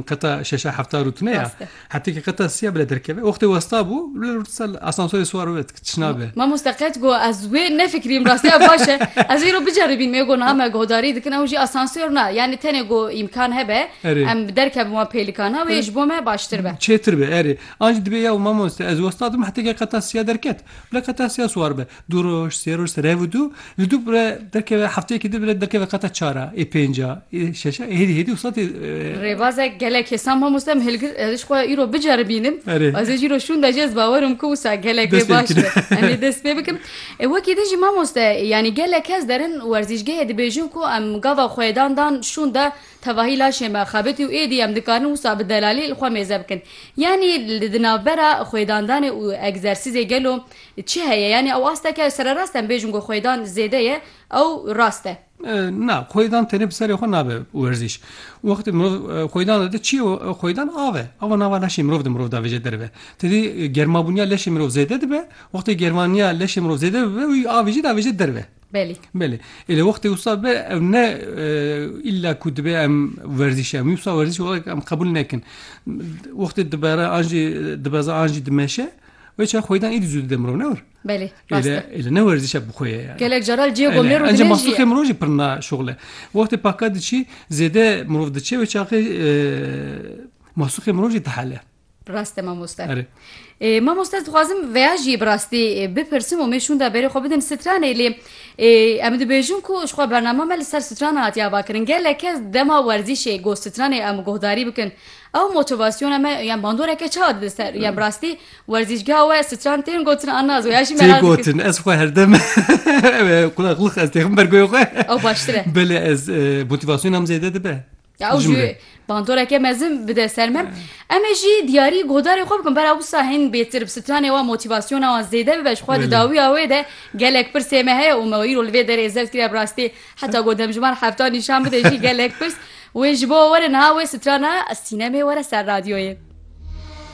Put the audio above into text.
Qeta şeşa hefta rûtine ya. Rast e. Hetekî qeta sî ya bile derkeve. Wextê westa bû, bile rûtisa li asansûrê siwar bibe ti tişna be. Mamoste qet got ez wê nefikirîm rastî ya baş e. Ez îro biceribîn me got niha me guhdarî dikin ew jî asansûr na. Yanî tenê got îmkan hebe Erê. em derkevin wan pêlikan na wê ji bo me baştir be. Çêtir be erê. An jî dibê ya û mamoste ez westa dim hetekî qeta sî ya derket. Bile qeta sî ya siwar bibe. Du roj, sê roj, rev û du, li du bire derkeve hefteyekî din bire derkeve qata çar a, ê pênc a, ê şeş a, ê hêdî hêdî wisa tê Rêbazek gelek hêsan mamoste em hilgir ez ji xwe ya îro biceribînim. Erê. Ez ê jî îro şûnde jî ez bawer im ku wisa gelek Dest pê baş bikin. be. Em ê dest pê bikin. Ê wekî din jî mamoste yanî gelek kes derin werzîşgehê dibêjin ku em gava xwe yê dan dan şûnde tevahî laşê me xebitî û êdî em dikarin wisa bi delalî li xwe mêze bikin. Yanî li di navbera xwêdandanê û egzersîzê gelo Çi heye? Yanî ew asteke ew sererast em bêjin ku xwêdan zêde ye ew rast e? Na, xwêdan tenê bi serê xwe nabe werzîş. Wextê mirov xwêdan dide çi ye? Xwêdan av e. Ava nava leşê mirov di mirov de avêje derve. Ti dî germabûniya leşê mirov zêde dibe, wextê germaniya leşê mirov zêde bibe wî avê jî diavêje derve. Belê. Belê. Ê lê wextê wisa bibe ew ne îlla ku dibe em werzîş em wî wisa werzîş welek em qebûl nekin. Wextê dibere an jî dibeze an jî dimeşe Ve çay xweydan êdî zû dide mirov ne wir. Belê. Êle ne werzîşe bi xwe ye yani. Gelek caran cihê gomê ro Encî mastûkê mirov jî pirna şoxle. Wextê paka diçî zêde mirov diçe wê çaxê mastûkê mirov jî dihele. Rast e mamoste. Erê. Mamoste ez dixwazim veya jî bi rastî bipirsim û me şûnda berê xwe bidin stranê lê em dibêjin ku ji xwe bernama me li ser strana hatiye avakirin. Gelek kes dema werzîşê got stranê em guhdarî bikin Ew motivasyona me yan bandoreke çar di ser ya birastî werzîşgeha we stran tên gotin an nazo ya jî merak gotin ez xwe herdem qulaqlix ez têxim ber goyê xwe ew baştir e belê ez motivasyona em zêde dibe ew jî bandoreke mezin bide ser me em ê jî diyarî godarê xwe bikin bera wisa hên bêtir bi stranê wa motivasyona wan zêde bibe ji xwe di dawiya wê de gelek pirsê me heye û me wî ro li vê derê zevt kiriye bi rastî Heta ku demjimar hefta nîşan bide jî gelek pirs wê ji bo were niha wê strana sînemê were ser radyoyê.